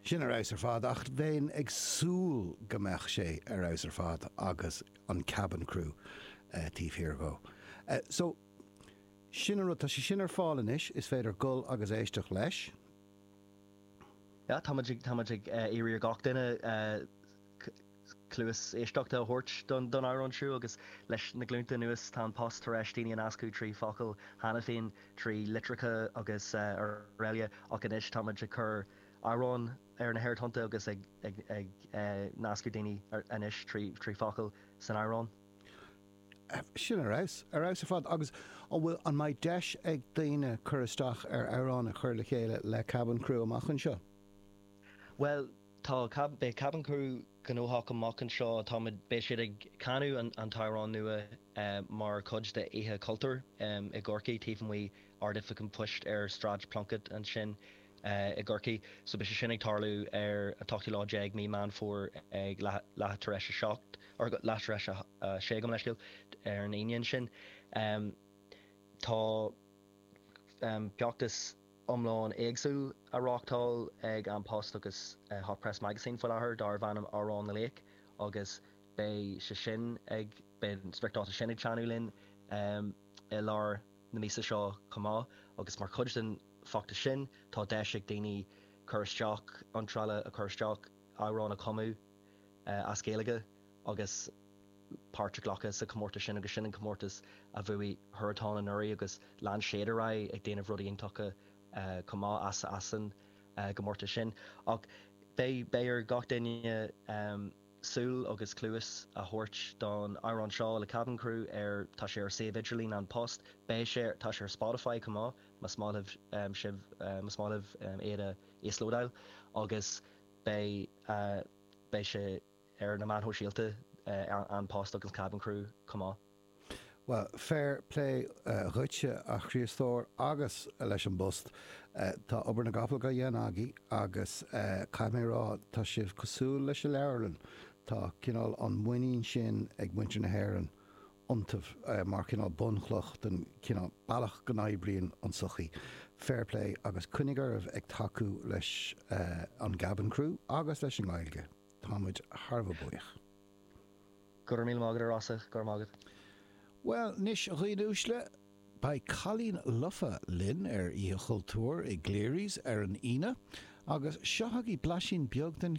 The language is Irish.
Sin ar fheabhas ar fad, ach bheinn ag súil go mbeadh sé ar fheabhas ar fad agus an Kabin Crew taobh thiar dhó. So, sin an rud, tá sé sin ar fáil anois, is féidir dul agus éisteacht leis. Tá muid ag iarraidh ar gach duine. cluas éisteachta a thabhairt don amhrán siúd agus leis na glúnta anuas tá An Post tar eis daoine a nascadh trí focail cheana féin, trí litreacha agus araile ach anois táimid ag cur amhrán ar na haerthonnta agus ag nascadh daoine anois trí focail san amhrán. Sin ar fheabhas, ar fheabhas ar fad. Agus an bhfuil, an mbeidh deis ag daoine cur isteach ar amhrán a chur le chéile le Kabin Crew amach anseo? Bhuel, Tá, beidh Kabin Crew gnóthach amach anseo, táimid, beidh siad ag canadh an t-amhrán nua mar chuid de Oíche Chultúir i gCorcaigh taobh amuigh Ard-Oifig an Phoist ar Sráid Plunkett ansin i gCorcaigh. So beidh sé sin ag tarlú ar an t-ochtú lá déag mí Meán Fómhair ag leath tar eis a seacht, or leath tar eis a sé gabh mo leithscéal, ar an Aoine ansin. Tá feachtas iomlán éagsúil á reáchtáil ag An Post agus Hot Press Magazine faoi láthair darb ainm Amhrán na Laoch agus beidh sé sin ag, beidh an spriocdháta sin ag teannadh linn i lár na míosa seo chomh maith agus mar chuid den bhfeachtas sin tá deis ag daoine cur isteach, iontráil a chur isteach, amhrán a chumadh as Gaeilge. agus páirt a ghlacadh sa chomórtas sin agus sin an comórtas a bhuaigh Huartan anuraidh agus lean siad ar aghaidh ag déanamh rudaí iontacha chomh maith as, as an gcomórtas sin ach beidh beidh ar gach duine súil agus cluas a thabhairt don amhrán seo le Kabin Crew ar tá sé ar suíomh idirlín An Post beidh sé ar tá sé ar Spotify chomh maith mas maith libh sibh mas maith libh iad a íoslódáil agus beidh beidh sé ar na meáin shóisialta An Post agus Kabin Crew chomh maith. Bhuel, fair plé dhuitse a Chríostóir agus leis an bPost, tá obair na gcapall dá dhéanamh agaibh agus caithfidh mé a rá, tá sibh cosúil leis an leabharlann, tá cineál an muinín sin ag muintir na hÉireann iontaibh mar chineál bunchloch den chineál bealach go n-oibríonn an tsochaí. Fair plé agus coinnigh oraibh ag tacú leis an gKabin Crew agus leis an nGaeilge. Táimid thar a bheith buíoch. Go raibh míle maith agat, a Rossa, go raibh maith agat. Bhuel anois, a dhaoine uaisle, beidh Cailín Lofa linn ar Oíche Chultúir i gCleary's ar an Aoine, agus seo chugaibh blaisín beag den.